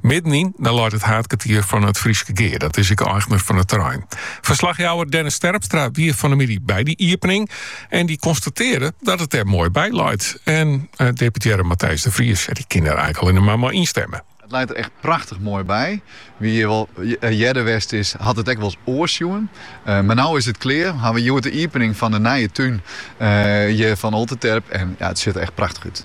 Middenyn, dan leit it haadkertier fan it Fryske Gea. Dat is ek eigner fan it terrein. Ferslachjouwer Dennis Terpstra wie fan de middei by dy iepening. En dy konstatearre dat it der moai by leit. En eh, deputearre Matthijs de Vries, dy kin der eins allinne mar mei ynstimme. It leit der echt prachtich moai by. Wa't hjir wol eh, earder west is, hat it echt wolris oars sjoen. Eh, mar no is it klear. Ha we hjoed de iepening fan de nije tún uh, eh, hjir fan Olterterp. En ja, it sjocht der echt prachtich út.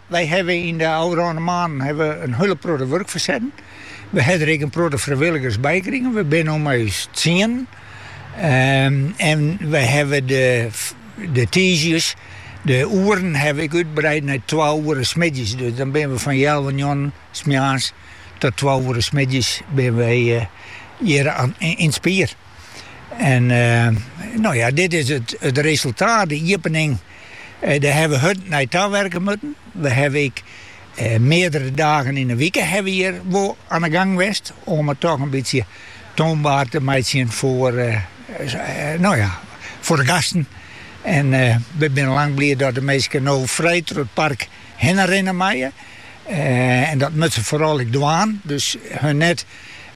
Wy hawwe yn de ôfrûne moannen ha we in hiele protte wurk fersetten. We ha der ek in protte frijwilligers by krigen. We binne no mei ús tsienen. En we hawwe de tiisdeis, de oeren hawwe we ek útbreid nei twa oere smiddeis. Dus dan binne we fan healwei njoggenen smoarns tot twa oere smiddeis binne we hjir yn it spier. En no ja, dit is it resultaat, de iepening. Dêr hawwe we hurd nei tawerke moatten. We hawwe ek meardere dagen yn 'e wike hawwe we hjir wol oan 'e gang west om it toch in bytsje toanbaar te meitsjen, no ja, foar de gasten. En we binne lang bliid dat de minsken no frij troch it park hinne rinne meie. En dat moatte se foaral ek dwaan, dus hun net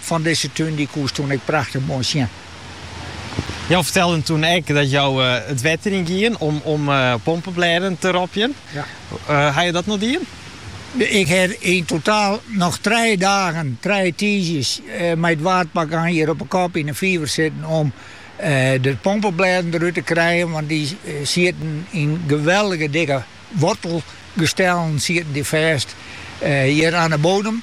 Fan dizze tún dy koest toen ek prachtich moai sjen. Jo fertelden toen ek dat jo it wetter yn gienen om pompeblêden te ropjen. Haw jo dat noch dien? Ik haw yn totaal noch trije dagen, trije tiisdeis, mei it waadpak oan hjir op 'e kop yn 'e fiver sitten om de pompeblêden derút te krijen, want dy sieten yn geweldige dikke wortelgestellen sieten dy fêst hjir oan 'e bodem.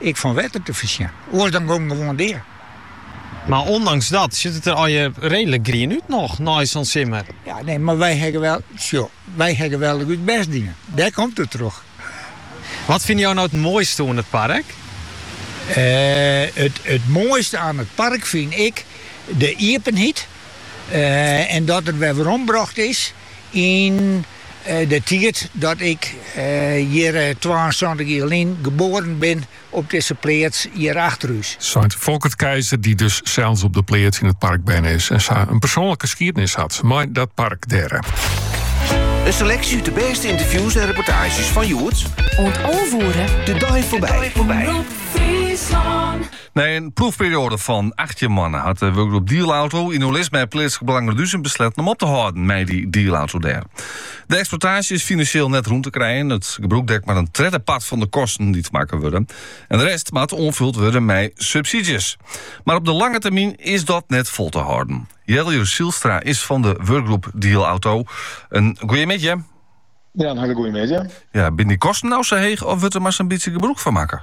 Ek fan wetter te foarsjen, oars dan gong it gewoan dea. Mar ûndanks dat sjit it der allegear reedlik grien út noch nei sa'n simmer. Ja, nee, mar wy hawwe wol, sjo, wy hawwe wol ek ús bêst dien. Dêr komt it troch. Wat fine jo no it moaiste oan it park? It moaiste oan it park fyn ik de iepenheid en dat it wer werombrocht is. yn de tiid dat ik hjir twaensantich jier lyn geboaren bin op dizze pleats hjir achter ús. Seit Folkert Keizer, dy't dus sels op de pleats yn it park berne is en sa in persoanlike skiednis hat mei dat park dêr. In seleksje út de bêste ynterviews en reportaazjes fan hjoed. Oant alve oere. De dei foarby. Nei in proefperioade fan 18 moannen hat de wurkgroep Dielauto in oerlis mei Pleatslik Belang Reduzum besletten om op te hâlden mei dy dielauto dêr. De eksploitaasje is finansjeel net rûn te krijen. It gebrûk dekt mar in tredde part fan de kosten dy't makke wurde. En de rest moat oanfuld wurde mei subsidies. Mar op de lange termyn is dat net fol te hâlden. Jelle Zijlstra is fan de wurkgroep Dielauto. In goeiemiddei. Ja, in hiele goeie middei. Ja, binne dy kosten no sa heech of wurdt der mar sa'n bytsje gebrûk fan makke?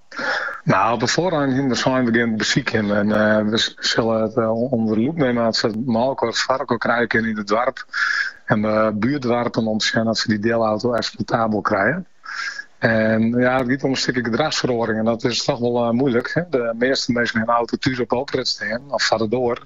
Nou, op 'e foarrang hiene we sein begjin it besykjen en we sille it ûnder de lûp nimme as se mei-elkoar foarelkoar krije kinne yn it doarp en buertdoarpen om te sjen oft se dy deelauto eksploitabel krije. En ja, it giet om in stikje gedrachsferoaring en dat is toch wol moeilik. De measte minsken hawwe in auto thús op de oprit stean of foar de doar.